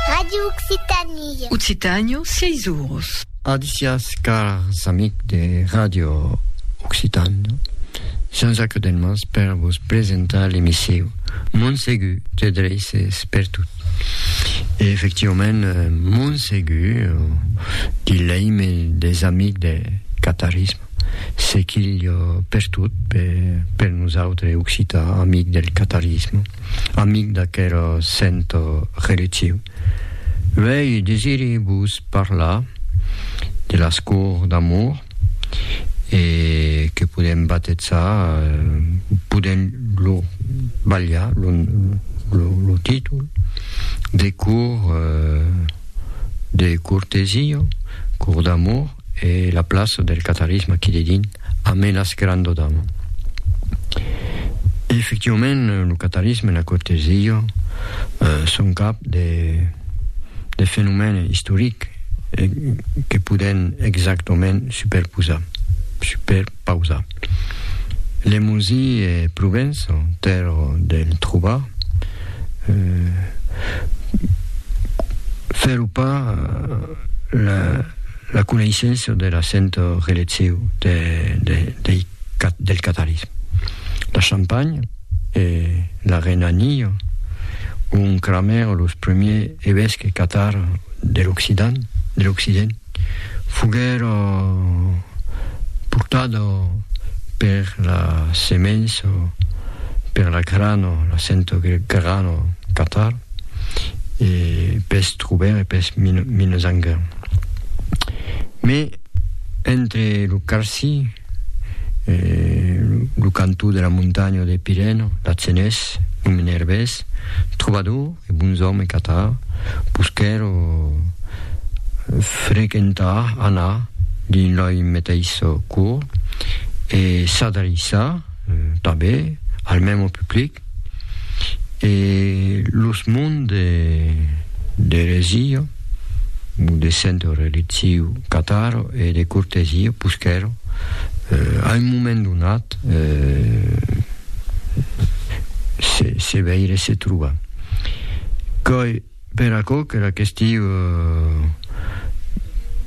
Radio Occitanie. Occitànio, siei zurus. Adicias cars amics de Radio Occitànio. Jean-Jacques Delmas per vos presentar l'emissiu Montsegu te dreises per tot. E efectivament, euh, Montsegu, di l'eime des amics de catarisme, se quilh per tot, per, per nosautres occitans amics del catarisme. amic d'aquera sent reliciu, uèi desiri vos parlar de las cours d'amor e que podem batezar, podem lo balhar lo, lo, lo títol de cours de cortesia, cours d'amor e la plaça del catarisme aquí dedins. Amenas querando damb. E efectivament lo catarisme, la Corte Zillo, son cap de de fenomène istoric que podèn exactament superposar, superpausar. Lemosi e Provença, tèrra del trobar, fèro pas la La coneissença de la santa relecciu del catarisme. La Champagne e la Renania, ont cramèron los primiers evesques catars de l'Occident, de l'Occident, foguèra portada per la semença, per la grana, la santa grana catar, e pes Troubert e pes Minnesänger. Me entre lo Carsi, lo cantó de la montanha de Pirène, Lacenés, lo Menerbés, trobador e bonzòme catar, posquèro frequentar, anar, dins loi meteis cor, e s'adreissar, tanben, al mèmo public, E los monts de d'eresia, o de centro reliziu cataro e de cortesia, puschèro, a un moment donat, se se veire se trobar. Quai Per aquò qu'era question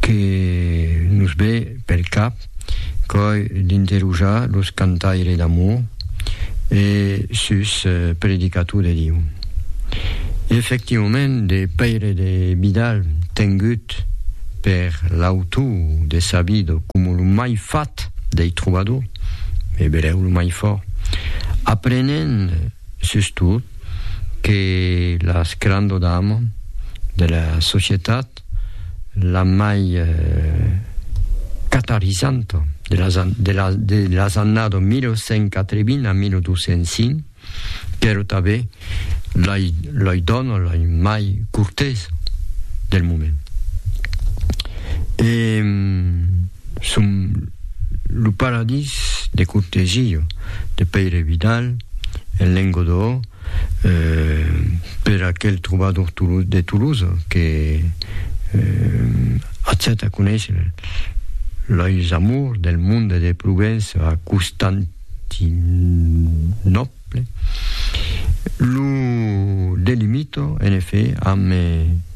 que nos ve pel cap, qu'òi d'interrojar los cantaires d'amor e sus predicator de Diu. E efectivament de Pèire de Vidal tengut per l'autor de Sabido coma lo mai fat dei trobadors, e berèu lo mai fòrt, aprenent sustot, que las crando d'amo de la societat, la mai catalisanto de las an, de las, de las annado 1180 a 1205, qu'èro tanben lai, lai dono lai mai cortés del moment. E Son lo paradís de cortesia de Pèire Vidal en lenga d'Òo per aquel trobador de Tolosa que accèta conéisser lais amors del monde de Provença a Constantinòpla. Lo delimito, en efet, amb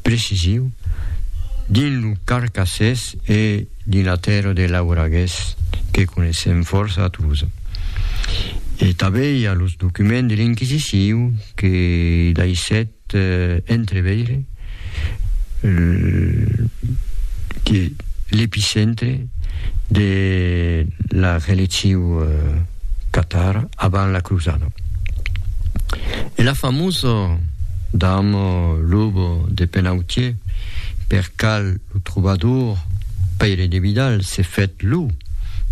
precision, dins lo Carcassés e dins la tèrra de Lauragués, que coneissèm fòrça a Tolosa. E tanben i a los documents de l'Inquisicion que daissèt Te entreveire que l'epicentre de la religiu catara avant la crusada e la famosa dama loba de Penautier, per cal lo trobador Pèire de Vidal se fèt lo,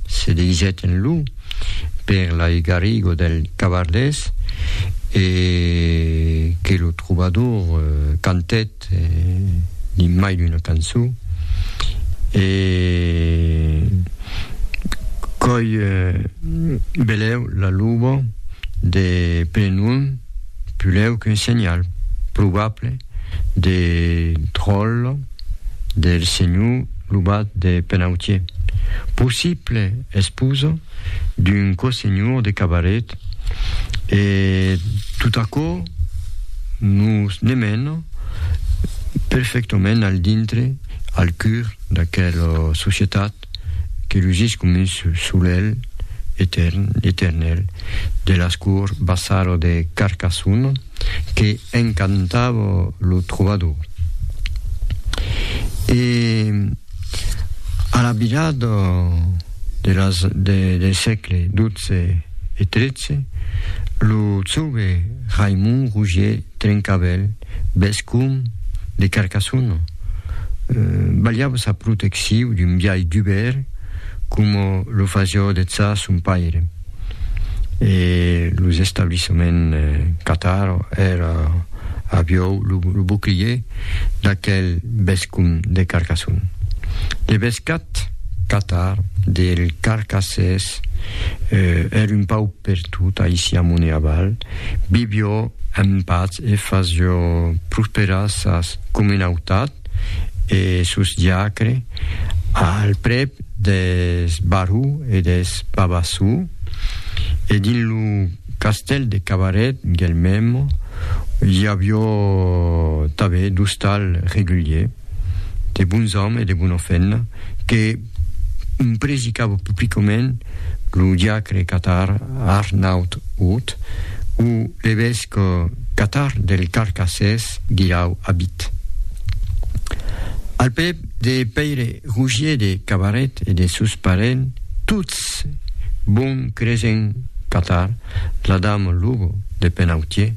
se deguisèt en lo, per lai Garrigo del Cavardés e que lo trobador cantèt dins mai d'una cançó e qu'òi belèu la luba de Plenum pulèu qu'un senhal probable de tròlla. del senhor Lubat de Penautier, possible esposo d'un cosenhor de Cabaret, e tot aquò nos ne mena perfectament al dintre, al cur d'aquela societat que lugís com un solelh etèrn, eternèl, de las cours Bassaro de Carcassona. que encantava lo trobador. E a la virada de las de de sègle dotze e tretze, lo jove Raimond Rougier Trencavèl, vescomb de Carcassona, balhava sa protecciu d'un biais dubèr coma lo fasiá dejà son paire. e los establissements Qatar èra aviou lo bouclier d'aquel bescon de Carcassonne. De bescat, Qatar del Carcassés èra un pau pertot aicí amont e aval, vivió en patz e fasió prosperar sas comunautats e sos diacres al prèp deth Barru e deth Babassú, e dins lo castèl de Cabaret, Guelmèm, i avió tanben d'ostal regulier, de bons òmes e de bona feina, que presicava publicament lo diacre catar Arnaut Haut o l'evesc catar del Carcassés Guirau Abit. Al pè. De Pèire Rougier de Cabaret e de sos parents tots, bon cresent qu'atar la dama Lugo de Penautier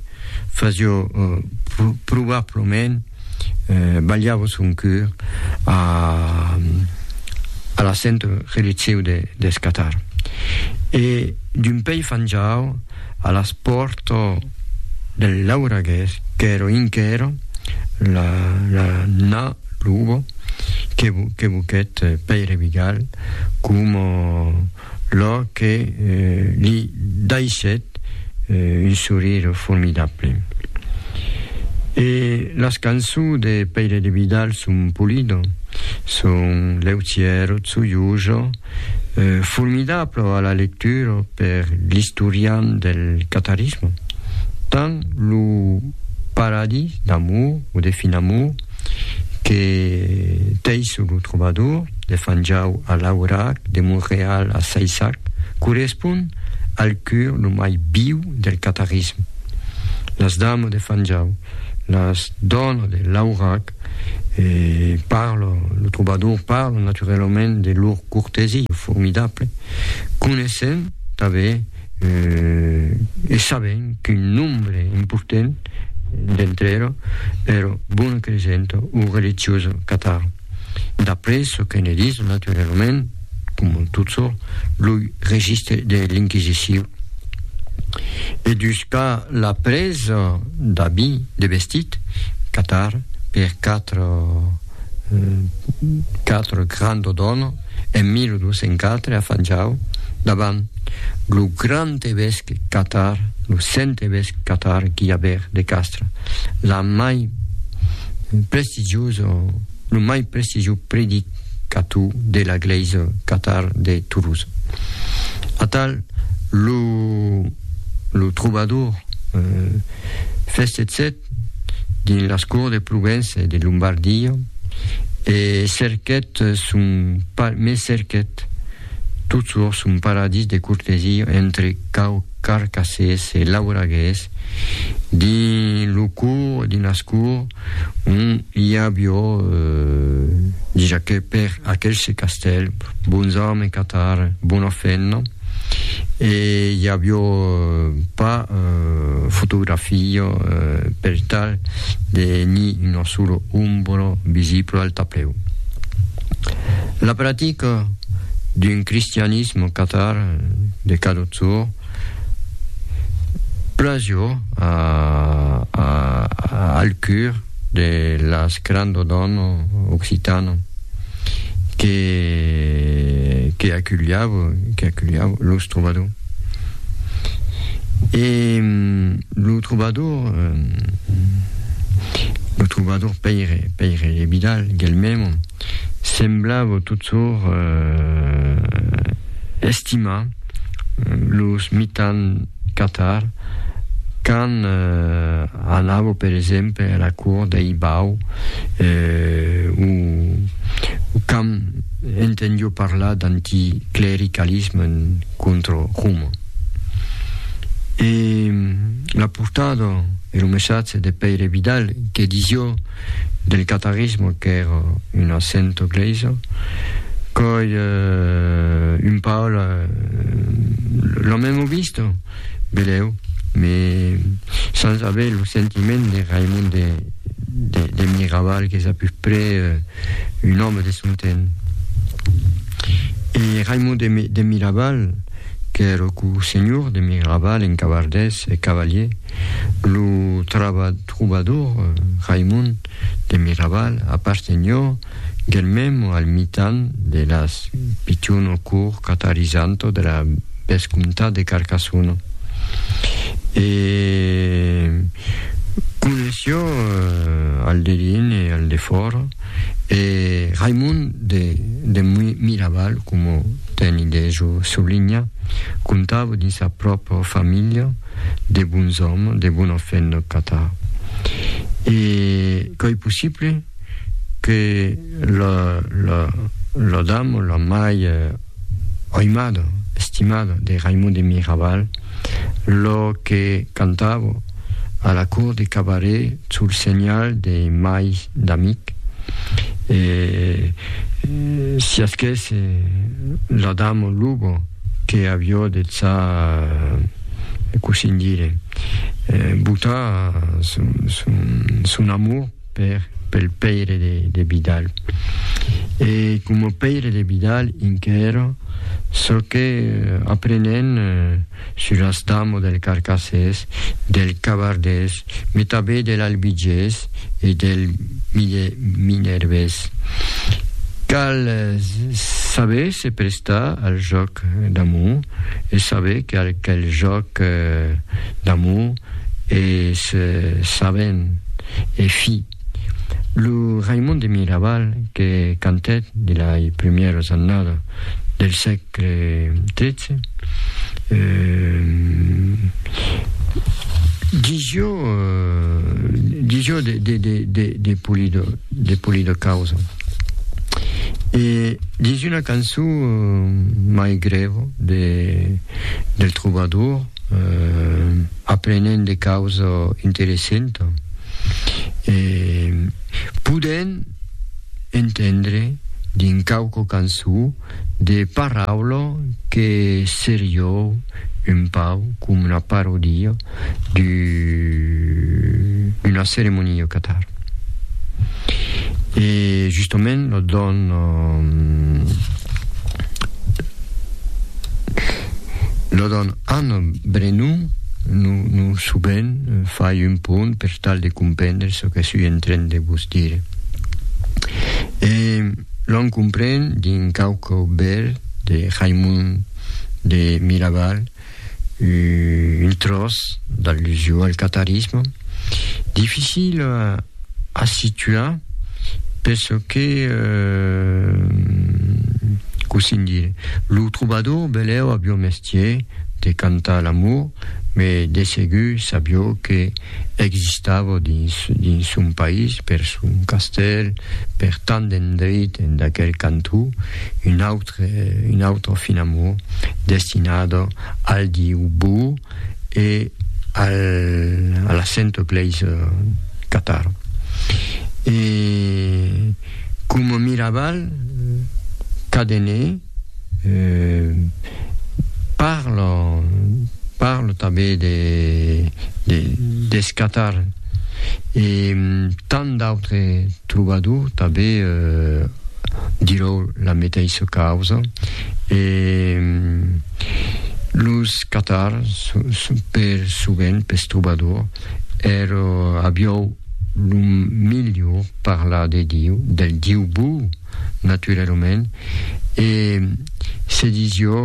fasió probablament balhava son cur a la centre relitziu deth Catar e d'un pei fanjau a las pòrta del Lauragués qu'èra enquera la Lugo, que voquèt Pèire Vigal coma lò que li daissèt un sorire formidable. E las cançons de Pèire de Vidal son Pulido, son Leutièro, Tsuiujo, formidable a la lectura per l'istorian del catarisme, tant lo Paradis d'amour o de fin amour, que tei sur lo trobador de Fanjau a Laurac, de Monreal a Saissac, correspond al cur lo mai viu del catarisme. Las dames de Fanjau, las donas de Laurac, eh, parlan, lo trobador parla naturalament de lor cortesia formidable, coneissent tanben E sabèm qu'un nombre important d'entre era ero bona cresenta o religiosa catar. D'après çò que ne dis, naturalament, coma tot çò, lo registre de l'Inquisicion. E dus qu'a la presa d'abit de vestit, catar per quatre quatre grand O'Donnell en 1204 a Fanjau davant lo grand evesque catar, lo sent evesque catar Guillabert de Castres, la mai prestigiusa, lo mai prestigius predicator de la glèisa catar de Toulouse. Atal lo lo trobador Festetset dins las cours de Provença e de Lombardia e cerquèt son me cerquèt totjorn son paradís de cortesia entre caucarcasés e lauragués dins lo cours dins las cours ont i avió dija que per aquel se castèl bons òmes catar bona fenna e i avió pas fotografia per tal de ni una sola ombra visibla al taplèu. La practica d'un cristianisme catar de cadotjorn plajor al cur de las crando dono occitano que que aculhavo que aculhavo los trobador e lo trobador lo trobador Pèire Pèire e Vidal Guelmèmo Semblavo totjorn estimar los mitan Qatar quand anavo per exemple a la cour dei Bau o quand entendio parlar d'anticlericalisme contra Roma. E la portada e lo messatge de Pèire Vidal que disio del catarisme qu'èra un accento gleisa, coi un pau la la memo vista, beleu, me sans aver lo sentiment de Raimond de de de Miraval qu'es a peu prè un òme de son temps. E Raimond de de Miraval qu'èra cou senhor de Miraval en cavardés e cavalier, Lo trobador Raimond de Miraval apartenhó guelmèm al mitan de las pichono cur catarizanto de la vescomtat de Carcassona e coneishió al de dins e al de fòra e Raimond de Miraval, coma Teni Dejo soulinha, comptava dins sa pròpra familha de bons òmes, de bona fe en nòth Catar. E qu'ei possible que la, la, la dama, la mai aimada, estimada de Raimon de Miraval, la que cantava a la cort de Cabaret sul senhal de mai d'amic, e siasquèsse la dama luba, Que avió de ça cossín dire botar son amor per pel pèire de Vidal. E coma pèire de Vidal inquèra çò que aprenèn sur l'astamo del carcassés, del cavardés, me tanben del albigés e del minervés. Cal saber se prestar al jòc d'amor e saber quel jòc d'amor es sabent e fi. Lo Raimon de Miraval que cantèt de lai prumieras annada del sègle tretze, digió digió de de de de de Pulido de Pulido causa. E dins una cançon mai grèva de del trobador, Aprenent de causa interessenta e podent entendre dins quauqua cançó de paraula que serió un pauc com una parodia d'una ceremonia catar. E justament lo dòna Lo don Anno Brenu no suben fai un pont per tal de comprendre çò que sui en tren de vos dire. E l'on compren d'un cauco bèl de Raimond de Miraval, un tròç d'allusion al qatarisme, dificil a situar per çò que cossín dire, lo trobador belèu avió mestier de cantar l'amor, me de segur sabió que existava dins dins son país, per son castèl, per tant d'endreit en d'aquel cantó, un aut autre, un autre fin amor destinado al diu Bu e al, a la Sainte Place euh, Qatar. E com Miraval Cadené euh, parla, parla tanben de, de, des Qatar e tant d'autres, Trobador tanben dirò la meteissa causa e los catars per sovent pes trobadors èrò aviòu lo melhor parlar de Diu, del Diu bou naturalament e se disió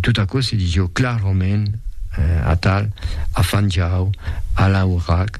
tot aquò se disió clarament atal afanjau a l'aurac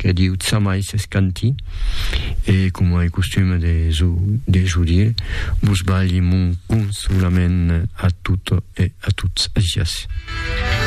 que diu Tsamai s'es canti, e coma ei costum de s'o dire, vos balhi mon consolament a tot e a tots. Gràcias.